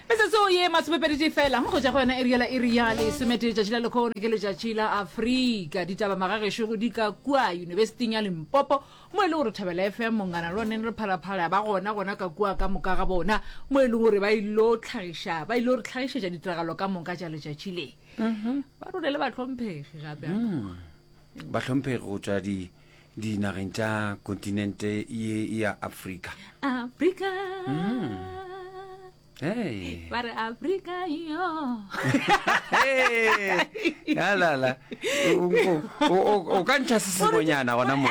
metsotso ye masomepeditee fela go ja go yona e riela e riale e sometee letšatši la lekgono ke letšatši la afrika ditaba magagešogo di ka kua yunibesiting ya limpopo mo e leng gore thabela fm mongana le oneng re phalaphala ba gona gona ka kua ka moka ga bona mo e leng gore ba ilo tlhagiša ba ilo re tlhagišetša ditiragalo ka moka tša letšatši le ba rone le batlhomphegi gape ba tlhomphege go tswa di dinageng tša kontinente ye ya afrika afrika hey. ba re afrika yo alala o ka ntšha se sengwenyana gona mo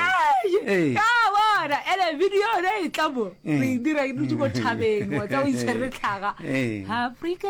bona ele video yone e tla mo eh. re e dira ke dutse mo thabeng wa tsa o itshwere tlhaga eh. afrika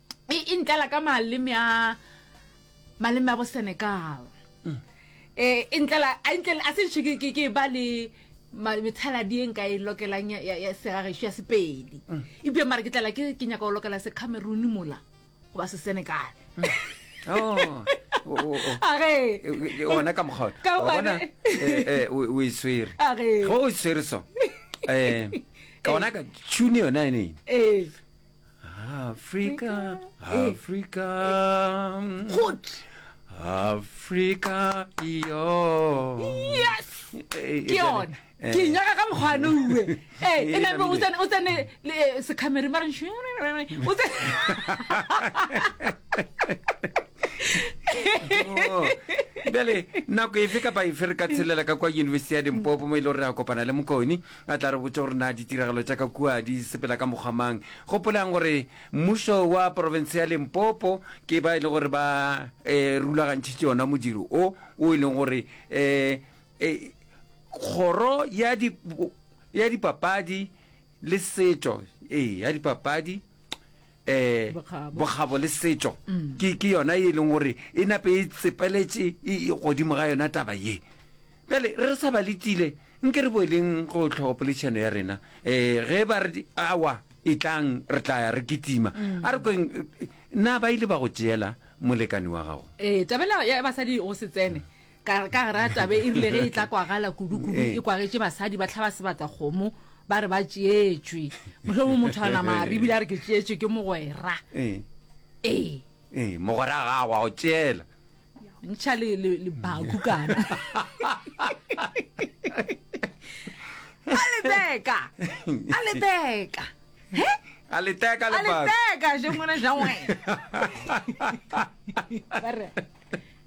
e, e ntlela ka maleme a maleme a bo senegal um e ntlela a ntlela a sentšhe ke ke ba le methaladi e nka e lokelang ya segageso ya sepedi mm. ebile mara ke tlela ke nyaka go lokela se cameroon mola goba se senegal mm. oh. age ona ka mokgaona o e swere ge o e swere so um ka ona ka tune yona e neng Afrika, Afrika, Afrika, yo. Yes! Eh, ke yone eh. ke nyaka ka mokgwane uwe ee e name o tsene le eh, secamere mare o tsene oh. bjale nako efe kapa efe re ka tshelela ka kwa university ya dimpopo mo e le gore re a kopana le mokoni A tla re botša gore na ditiragalo tša ka kua di sepela ka mokgwa mang. Gopolang gore mmušo wa porofense ya Limpopo ke ba e lego gore ba rulagantšhitše ona modiro o, wo e lego gore kgoro ya dipapadi le setšo, ee, ya dipapadi, um bokgabo le setšo ke yona e leng gore e nape e tsepeletše godimo ga yona taba ye bjale re sa ba letile nke re boeleng go tlhogo poledišano ya rena um ge ba re awa e tlang re tla ya re kitima mm. a re kweng na ba ile ba go tšeela molekane wa gago ee tabela ya basadi go se tsene ka re ka gare a tabe e rile ge e tla kwagala kudu-kudu eh. e kwagetše basadi ba tlhaba sebata kgomo ba re ba tšeetšwe motlhomo motho a nama a re ebile a re ke tšeetšwe ke mogwera eh. ee ee mogwera gago a go tšeela ntšha lebaku kana a leteka a leteka he a leteka lebaku a leteka je ngwana ja ngwana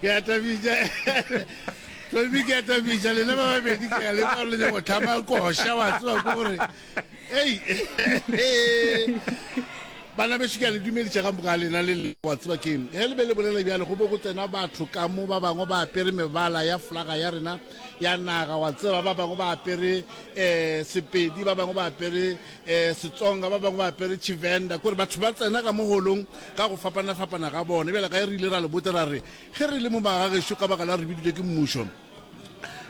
ke a tabija tlolmi ke a tabija lena ba babedi ke a le ba le go thama koša wa tswa ko gore ei bana beso ke a le dumedisa ga moka lena le le wa tswa ke ge le be le bolela bjale go bo go tsena batho ka mo ba bangwe ba apere mebala ya flaga ya rena ya naga wa tseba ba bangwe ba apere um sepedi ba bangwe ba apere e Setsonga, ba bangwe ba apere Tshivenda, kore batho ba tsena ka mo holong ka go fapana-fapana ga bona. Bjale ka e re ile ra le botsa ra re, ge re le mo magagešo ka baka la re bidilwe ke mmušo,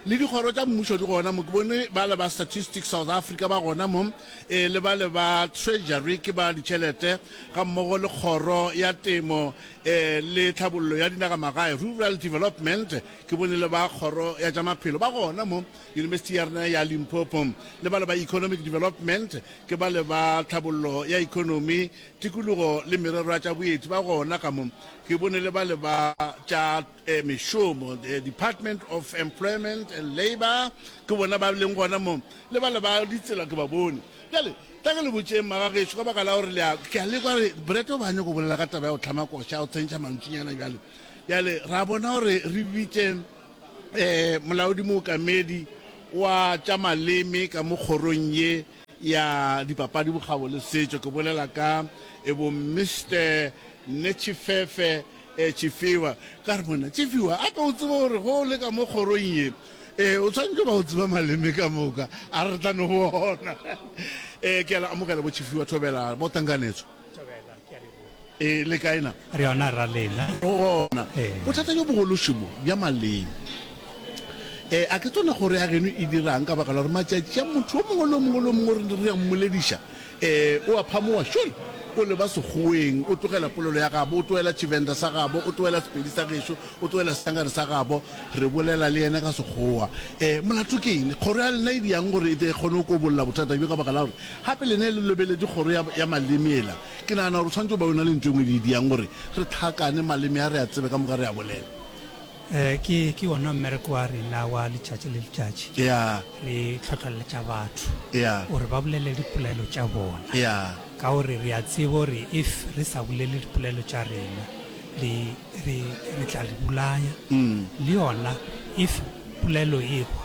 le dikgoro tša mmušo di gona mo, ke bone ba le ba Statistics South Africa ba gona mo, e le ba le ba Treasury ke ba ditšhelete, ga mmogo le kgoro ya temo e le tlhabollo ya dinagamagae, Rural Development, ke bone le ba kgoro ya tša maphelo ba gona mo. Yunibesithi ya rena ya Limpopo le bale ba Economic Development ke bale ba tlhabollo ya ekonomi, tikologo le merero ya tša boeti ba gona ka mo. Ke bone le bale ba tša eh, mešomo, the Department of Employment and Labour, ke bona ba leng gona mo, le bale ba ditsela ke ba bone. Bjale tla ke le botšeng magagešo ka baka la gore lea ke a lekwa re brete o ba nyako bolela ka taba ya go tlhama koša o tsentšha mantšinyana bjale bjale ra bona gore re bitše Ee, Molaodi Mookamedi wa tša Maleme ka mo Kgorong ye ya Dipapadi, Bokgabo le Setšo, ke bolela ka ebo Mister Netshifefe eh, Tšifiwa. Ka re, Monna Tšifiwa, a ka o tseba gore ge o le ka mo kgorong ye, eh, o tshwanetše ba o tseba maleme ka moka. A re re tla no bona. Eh, ke a le amogela bo Tšifiwa Thobela, bo Tankanetso. e le kae na re yona ra lena gona bothata jo bogološimo bja maleng um a ke tsone gore ya geno e dirang ka baka la gore matšatši a motho o mongwe le o mongwe le o mongwe gore re ya mmolediša um o a phamoa sure o leba segoeng o tlogela polelo ya gabo o tlogela tshivenda sa gabo o tlogela sepedi sa gešo o tlogela sesangare sa gabo re bolela le ene ka segoa um molato ke eng kgoro ya lena e diyang gore e kgone go kobolola bothata bjo ka baka la gore Gape le ne le lobeledi kgoro ya, ya maleme ela. Ke nagana gore o swanetše go ba o na le ntho e nngwe e le e diang gore re tlhakane maleme a, re a tsebe ka moka, re a bolele. Ee, ke, ke wona mmereko wa rena wa letšatši le letšatši. Eya. Re hlohleletša batho Eya. gore ba bolele dipelaelo tša bona, Eya. ka gore re a tseba gore if re sa bolele dipelaelo tša rena, re, re, re tla re bolaya. Le yona if pelaelo e hwa,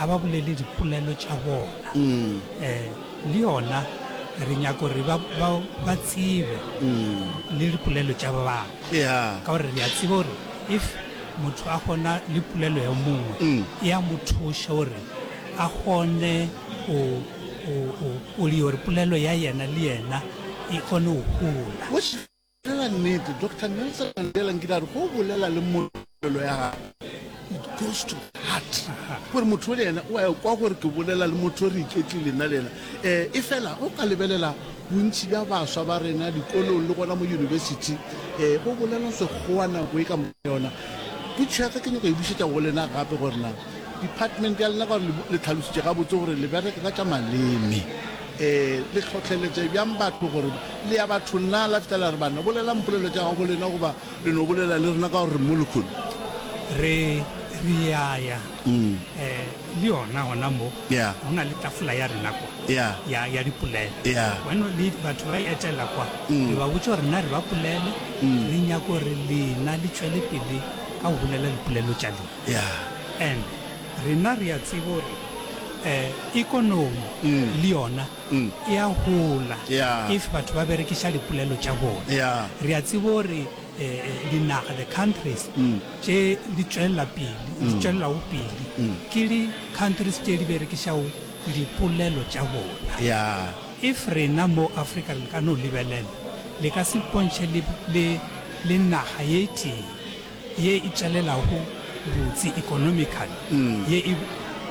a ba bolele dipolelo tša bona um le yona re nyaka gore ba, ba, ba tsebe le dipolelo tša ba bangwe Yeah. ka gore re a tseba gore if motho a kgona le polelo ya mongwe e a mo thuša gore a kgone go go- go- go dira gore polelo ya yena le yena e kgone go gola Bolela nnete, Doctor Nelson Mandela nkile a re go bolela le molelo ya gago. It goes to heart. Gore motho le yena o a kwa gore ke bolela le motho re iketlile nna le yena. Eh, e fela o ka lebelela bontši bja baswa ba rena dikolong le gona mo university eh bo bolela sekgowa nako e ka mo yona. Putšho ya ka ke nyaka e bušetša go lena gape gore na department ya lena gore le tlhalositše gabotse gore le bereka ka tša maleme. Ee, le hlohleletše bjang batho gore le ya bathong na? La fetela re banna, bolelang polelo tša gabo lena goba le no bolela le rena ka gore re mo lekholo. Re, re ya ya. Eh, le yona gona mo, Yeah. go na le tafola ya rena kwa, Yeah. ya, ya dipolelo. Yeah. Bueno, le batho ba e etela kwa, re ba botša gore na re ba polele, re nyaka gore lena le tšwele pele ka go bolela dipolelo tša lena. Yeah. And Rena re a tseba gore ekonomi le yona e a gola if batho ba berekiša dipolelo tša bona. Re a tseba gore dinaga, the countries, tše di tšwelela pele, di tšwelelago pele ke di countries tše di berekišago dipolelo tša bona. If rena mo Afrika le ka no lebelela, le ka se ipontšhe le le naga ye tee. ye e tšelelago botse economical ye e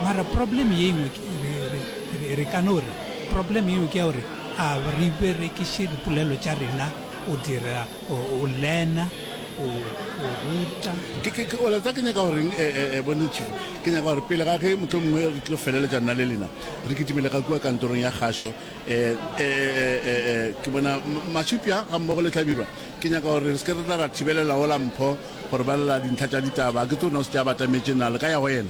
mara problem ye engwe ke re ka no re problem ye engwe ke ya gore a re berekiše dipolelo tša rena o dira o lena o ruta o leta ke nyaka goreng e, e, e, bone chief ke nyaka gore pele ga ge motho mongwe re tlo feleletša nna le lena re kitimele ga kua kantorong ya kgašo um ke bona mashupja ga mmogo le tlhabirwa Ke nyaka gore re se ke re tla ra thibelela ola Mpho go re balela dintlha tša ditaba. Ke tso nna o se ke a batametše nale ka ya go yena.